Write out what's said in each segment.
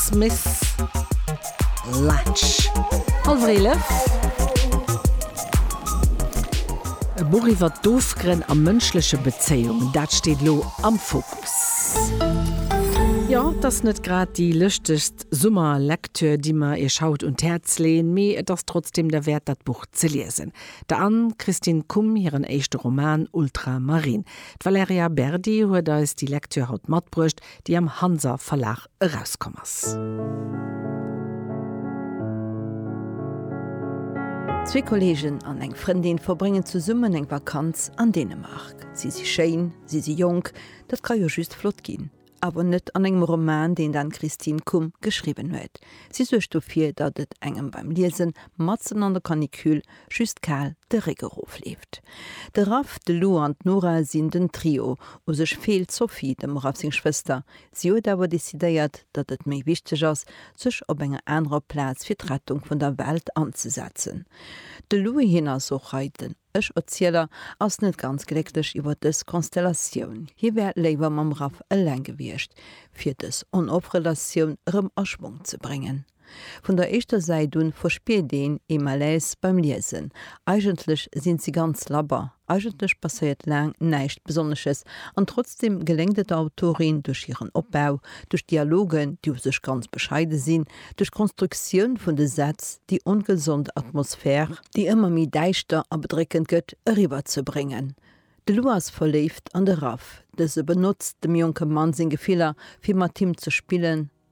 Smith Lach, hallwer eelef. E Buch iwwer d'Ofgrënn a mënschleche Bezéiungen, dat steet elo am Fokus. Jo, et ass net grad déi lëschtegst Summerlektür, déi mer Iech haut un d'Häerz leeën, mee et ass trotzdem derwäert, dat Buch ze liesen. Der Anne-Christine Kumb hiren éischte Roman Ultramarine. D'Valerija Berdi huet eis déi Lektür haut matbruecht, déi am Hanser Verlag erauskomm ass. Zwee Kolleegen an eng Frëndin verbréngen zesummen eng Vakanz an Dänemark. Si si schéin, si si jonk, dat ka jo just flott ginn. Awer net an engem Roman, deen d'Anne-Christine Kumb geschriwwen huet. Si suergt dofir, datt et engem beim Liesen, matzen an der Canicule, just kal de Réck erofleeft. De Raff, de Lou an d'Nora sinn den Trio. U sech feelt d'Sophie, dem Raff seng Schwëster, Si huet awer decidéiert, datt et méi wichteg ass, sech op enger anerer Plaz fir d'Rettung vun der Welt anzesetzen. De Louis, hien ass och hei den Ech-Erzieler, ass net ganz glécklech iwwer dës Konstellatioun. Hie wär léiwer mam Raph eleng gewiescht, fir dës On-Off-Relatioun erëm a Schwong ze bréngen. Vun der éischter Säit un verspiert een ee Malaise beim Liesen. Eigentlech sinn si ganz labber, eigentlech passéiert laang näischt Besonnesches, an trotzdeem geléngt et der Autorin duerch hiren Opbau, duerch Dialogen, déi u sech ganz bescheide sinn, duerch d'Konstruktioun vun de Sätz, déi ongesond Atmosphär, déi ëmmer méi däischter a bedréckend gëtt, eriwwer ze bréngen. De Lou ass verléift an de Raph, dëse benotzt dem jonke Mann seng Gefiller, fir mat him ze spillen,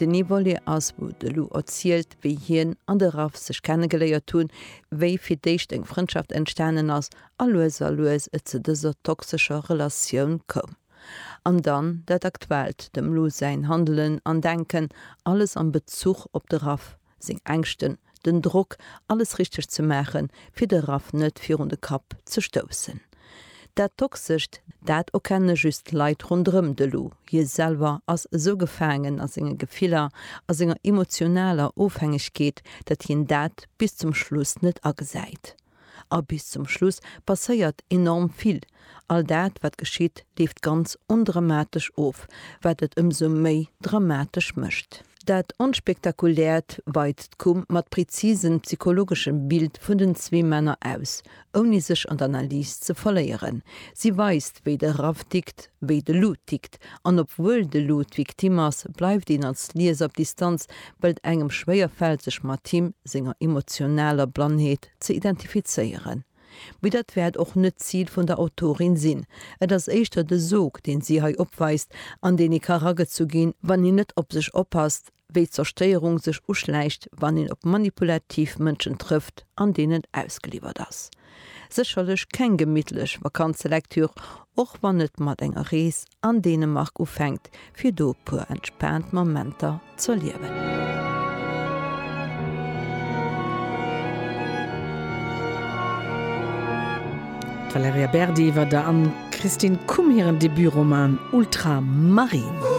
Den Evole ass, wou de Lou erzielt, wéi hien an de Raph sech kennegeléiert hunn, wéi fir d'éischt eng Frëndschaft entstanen ass a lues a lues et zu dëser toxescher Relatioun koum. An dann dat Aktuellt, dem Lou säin Handelen an Denken, alles am Bezuch op de Raph. seng Ängschten, den Drock, alles richteg ze maachen, fir de Raff net virun de Kapp ze stoussen. Dat Toxescht, dat erkenne just Leit ronderëm de Lou. Hie selwer ass esou gefaangen a senge Gefiller, a senger emotionaler Ofhängegkeet, datt hien dat bis zum Schluss net agesäit. A bis zum Schluss passéiert enorm vill. All dat, wat geschitt, leeft ganz ondramatesch of, wat et ëmsou méi dramatesch mécht. Dat Onspektakuläert weizt d'Kum mat präzisen psychologeschem Bild vun den zwee Männer aus, ouni sech an d'Analys ze verléieren. Si weist, wéi de Raff tickt, wéi de Lou tickt, an obwuel de Lou d'Victime ass, bleift een als Lieser op Distanz, well et engem schwéier fält sech mat him senger emotionaler Blannheet ze identifizéieren. Mee dat wäert och net d'Zil vun der Autorin sinn, et ass éischter de Sog deen si hei opweist, an deen ee ka ragezu ginn, wann een net op sech oppasst. wéi d'Zerstéierung sech uschläicht, wann een op manipulativ Mënschen trëfft an deenen ausgeliwwert ass. Sécherlech keng gemittlech Vakanzelektüre, och wann et mat enger Rees an Dänemark ufänkt, fir do e puer entspaant Momenter z'erliewen. D'Valerija Berdi iwwer der Anne-Christine Kumb hiren Debutroman Ultramarine.